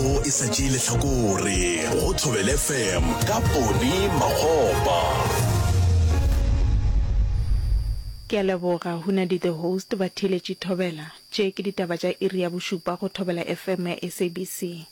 O e sa tšee lehlakore go Thobel FM ka Pone Makgopa. Ke a leboga Hunadi the host ba theeletše Thobela. Tše ke ditaba tša iri ya bošupa go Thobela FM ya SABC.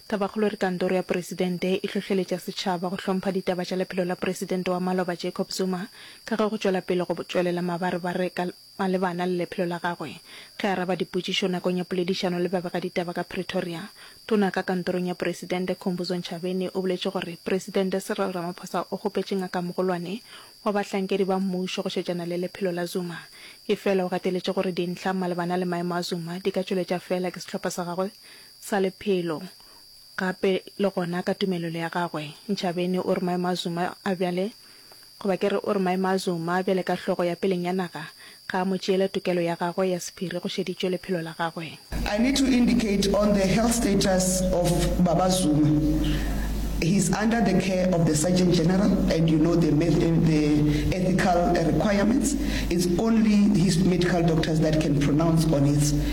Tabakgolo re kantoro ya Presidente e hlohleletša setšhaba go hlompha ditaba tša lephelo la Presidente wa maloba Jacob Zuma ka ge go tšwela pele go tšwelela mabarebare ka Malebana le lephelo la gagwe, ge a araba dipotšišo nakong ya poledišano le babegaditaba ka Pretoria, Tona ka kantorong ya Poresidente Khumbudzo Ntshavheni o boletše gore Poresidente Cyril Ramaphosa o kgopetše ngakamogolwane wa bahlankedi ba mmušo go šetšana le lephelo la Zuma, efela o gateletše gore dintlha malebana le maemo a Zuma di ka tšweletša feela ke sehlopha sa gagwe sa lephelo gape le gona ka tumelelo ya gagwe. Ntshavheni o re maemo a Zuma a bjale Goba ke re o re maemo a Zuma bjale ka hlogo ya peleng ya naga ga a mo tšeele tokelo ya gagwe ya sephiri go šeditšwe lephelo la gagwe. I need to indicate on the health status of Baba Zuma, he is under the care of the Surgeon General and you know the the ethical requirements, it's only his medical doctors that can pronounce on its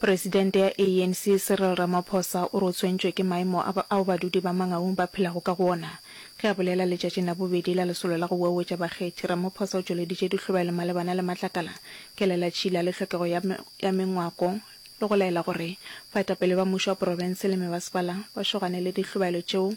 Presidente ya ANC Cyril Ramaphosa o re o tshwentšwe ke maemo a ba, ao badudi ba Mangaung ba phelago ka go ona. Ge a bolela letšatšing la bobedi la lesolo la go uauetša bakgethi, Ramaphosa o tšweleditše dihlobelo malebana le matlakala, kelelatšhila le hlokego ya, ya mengwako le go laela gore baetapele ba mušo wa profense le mebasepala ba šogane le dihlobelo tšeo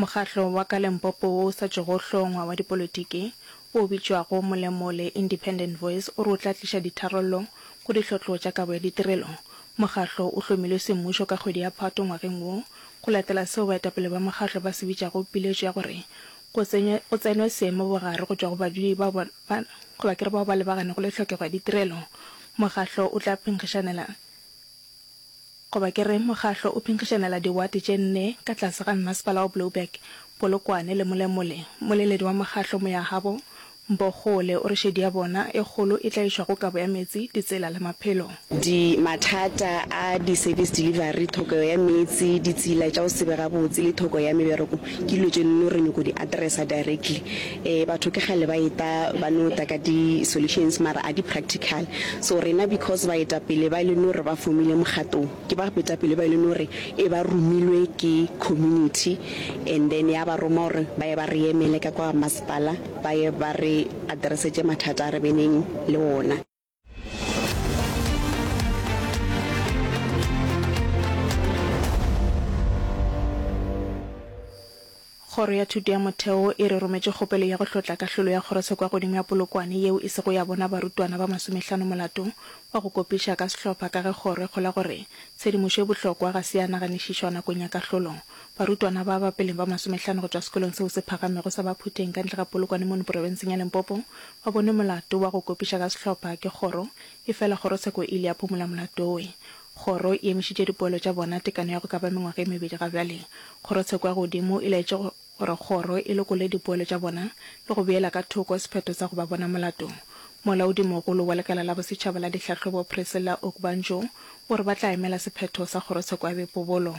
Mokgatlo wa ka Lempopo wo o sa tšego hlongwa wa dipolotiki, wo o bitšwago Molemo le Independent Voice o re o tla tliša ditharollo go dihlotlo tša kabo ya ditirelo. Mokgatlo o hlomilwe semmušo ka kgwedi ya Phato ngwageng wo go latela seo baetapele ba mokgatlo ba se bitšago piletšo ya gore go tsenywe go tsenwe seemo bogare go tšwa go badudi bao ba ba goba ke re bao ba lebaganego le tlhokego ya ditirelo. Mokgatlo o tla phenkgišanela Goba ke re mokgahlo o phenkgišanela diwate tše nne ka tlase ga Mmasepala wa Blouberg, Polokwane le Molemole. Moleledi wa mokgahlo Moyahabo Mbogole o re šedi ya bona e kgolo e tlaišwa go kabo ya metsi, ditsela le maphelo. Di mathata a di service delivery, thokego ya meetse, ditsela tša go se be gabotse le thoko ya mebereko Ke dilo tše no re nyoko di addressa directly. Eh batho ke kgale ba eta ba no ta ka di solutions mara a di practical. So rena because baetapele ba e le no re ba fomile mokgatong ke ba betapele ba e le no re e ba romilwe ke community and then ya ba roma gore ba ye ba re emele ka kwa masepala ba ye ba re addressetše mathata a re beneng le wona. Kgoro ya Thuto ya Motheo e re rometše kgopelo ya go hlotla kahlolo ya kgorose kwa godimo ya Polokwane yeo e sego ya bona barutwana ba masomehlano molato wa go kopiša ka sehlopha ka ge kgoro e kgolwa gore tshedimošo e bohlokwa ga se ya naganišišwa nakong ya kahlolo. Barutwana ba ba peleng ba masomehlano go tšwa sekolong seo se phagamego sa Baphuteng ka ntle ga Polokwane mono porofenseng ya Limpopo Wa bone molato wa go kopiša ka sehlopha ke kgoro, efela kgorotsheko e ile ya phumola molato wo. Kgoro e emišitše dipoelo tša bona tekano ya go ka ba mengwaga e mebedi ga bjale. Kgorotsheko ya godimo e laetše gore kgoro e lokole dipoelo tša bona le go beela ka thoko sephetho sa go ba bona molato. Molaodimogolo wa Lekala la Bosetšhaba la Dihlahlobo Priscilla Ogbanjo o re ba tla emela sephetho sa kgorotsheko ya bepobolo.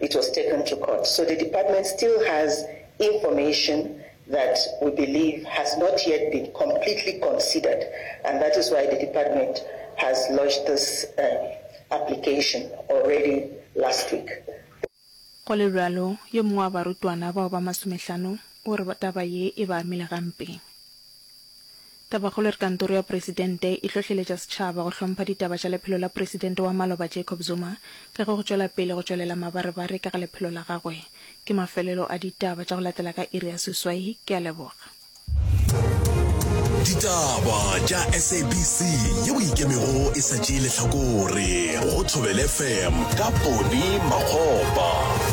It was taken to court, so the department still has information that we believe has not yet been completely considered and that is why the department has lodged this application already last week. Go le bjalo, yo mongwe wa barutwana bao ba masomehlano o re taba ye e ba amile gampe. Tabakgolo e re Kantoro ya Presidente e hlohleletša setšhaba go hlompha ditaba tša lephelo la Presidente wa maloba Jacob Zuma ka ge go tšwela pele go tšwelela mabarebare ka ga lephelo la gagwe. Ke mafelelo a ditaba tša go latela ka iri ya seswai. Ke a leboga. Ditaba tša SABC yeo e ikemego e sa tšee lehlakore go Thobela FM ka Ponny Makgopa.